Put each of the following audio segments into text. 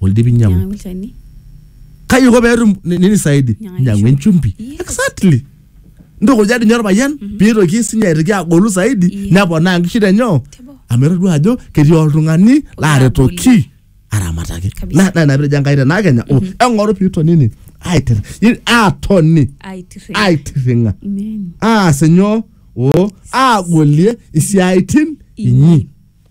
oldipi nyiang'u Nyiang'aki olchani. kaji iko peetum ni- nini saidi Nyiang'aki nyiang'u enchumbi Yes. exactly ntukuja dinye orpayian piitoki sinye aitoki agolu saidi Yes. neponaa nkishu tenyoo Teboo. amu etodua ajo ketii oltung'ani laaretoki aramataki Kabisa. Na- na ina pitejo enkai tenaa kenya o eng'oru piitonini aiter i- aatoni Aitirre. aitirring'a Amen. aas inyoo o aagolie isiaitin inyi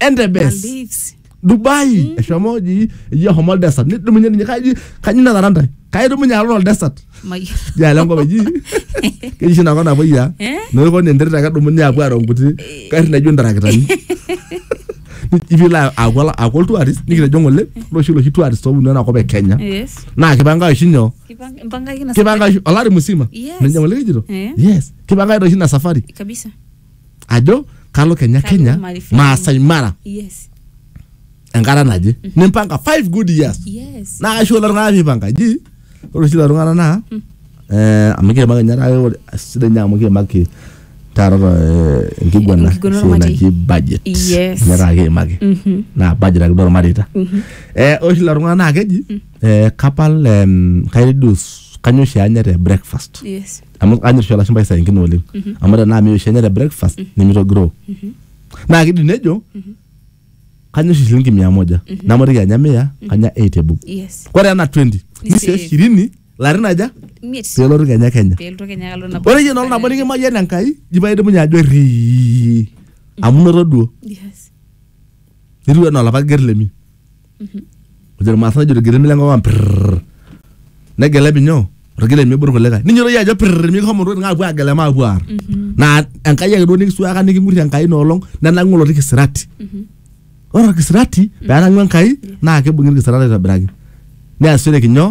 Entebes. Maldives. Dubai. Eshomo oji eji ahomo desert. Nidumunye ninye kaji kaji natara ntae. Kaidumunye alo tol desert. Mayiolo. Jalo enkop eji. Keji shi nakop napuoi ya. Eh? Noiko ni enterit ake edumunye apuo aaro nkuti garri naijo ntarakitani. Ivilo aku aku oltuarist nikitejo ng'ole loshi loshi tuarist obunu enakop e Kenya. Yes. Naa kipanga oshi nyoo? Kipang- Mpangaki na kipanga oshi olari musima Yes. nejia ng'ole kijito Eh. yes kipanga oshi ina safari kabisa. ajo kalo kenya Kalo kenya Maasai Mara. maasai mara yes enkata naje nimpanga five good years yes naa kaisho kulo tung'anak piipanga ji ore oshi lelo tung'anak naa eh, amu kiimaki ninye taata ore- sidai ninye amu kiimaki taata eh, enkiguana Enkiguana esiai ormarei. naji budget Yes. ninye taata kiimaki Mhm. naa budget ake duo ormareita Eh, ore oshi lelo tung'anak naa keji eh, kapal em, kai reduce kanyoo oshi anya te breakfast yes amu kanyor oshi olashumpai saa ingine oleng amu tenaa meyieu oshi enya te breakfast nemitogiroo naa kidim nejo kanyor oshi shilingi mia moja namatiki anya mia kanya eight ebob yes ore ena 20 Ni ni save. save shirini larin aja miet pelotu kenya kenya peelotu kenya alo nabo ore yie nolo nabo nikimayian enkai jipa idumunye ajo rii amu noto duo yes nitiu enaa olapa ger lemi ojo irmaasai nejo irgirimi lenkop ang prrrr negelep inyoo orgilep miibur irkulikae ninyototo iyie ajo prrrr mikihomo ntokitin aapuo aagelep maapuo aar naa enkai ake duo nikisuaaka niking'urrie enkai ina olong nenang'u oloti kisirati ore orkisirati peenang'u enkai naa kibung'i orkisirati aitobiraki neasishoreki nyoo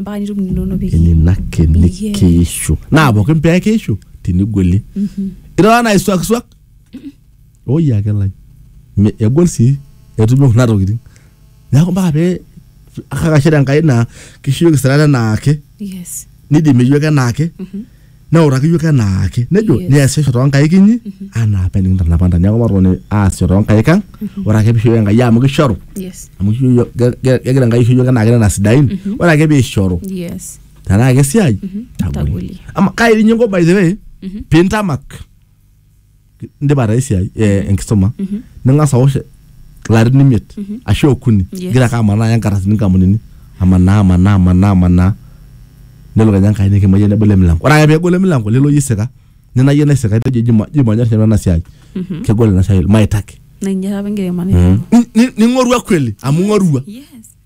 mpaka nitum ninono pii nena kenik Yes. keishu naa pookin pee keishu tinigweli irara naa isuakisuak oi ake lai Me- egol sii etumi kuna tokitin neeku mpaka pee kakashere enkai naa kishuyoki sirata enaake yes nidimi yoke enaake neutaki iyiok enaake nejo Yes. niasisho toonkaik inyi anaa apa enikintanapa ntae neeku matoni aasisho toonkaik ang ore ake piishoyo enkai amu kishoru Yes. amu kisho iyiok- ge- ge- kegira enkai aisho iyiok enaake nena sidain ore ake piishoru Yes. tenaa kesiai tagoli Tagoli. ama kai dii inye inko by the way pintamak indipa taa esiai eh, enkisuma ning'as awosh ilarin imiet ashu okuni Yes. igira ake amanaa aya nkardasini nkampunini amanaa amanaa amanaa amanaa nelo kenya enkai nikimayie nebolo emilango ore ake peegolo emilango lelo yie isika nina yie naisika etejo jima jima nyor nanu ena siai kegol ina siai maitaki na inye taapa enkiremore Ni- ni- ning'orua kweli amu ing'orua yes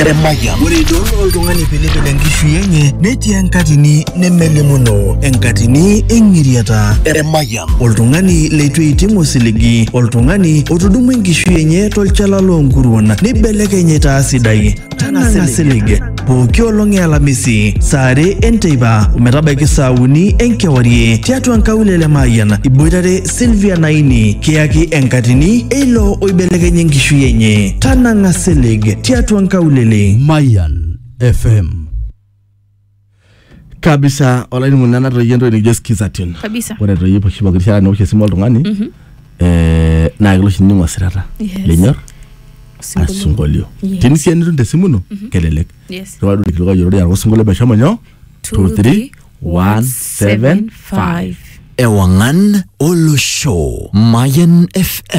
Eremaya. Ore idol oltung'ani pilipil enkishui enye netii enkatini nemelimuno enkatini eng'iriata. Eremaya. Oltung'ani leitu eiting osiligi, oltung'ani otudumua enkishui enye tolchala loonkuruon neibelekeny aitaa sidai. Tanang'a silig. pooki olong e alamisi saa are enteipa ometabaiki saa uni enkewarie tiatua nkaulele Mayian iboitare Sylvia Naini kiyaki enkatini eilo oibelekenye enkishui enye tanang'a silig tiatua nkaulele Mayan FM. kabisa olainining'oni nanu natoyie entoki nikijo skization Kabisa. ore etoyie oshi pooki rishata niosh esimu oltung'ani eh, naa kelo oshi nining'u osirata Yes. linyor Osinkolio. asinkolio Yes. tini sii enitum tesimu ino kelelek Yes. irriwaa duo irkilikuai oyiolori araka osinkolio meshomo nyoo Two, three, one, seven, five. Ewangan Olosho Mayan FM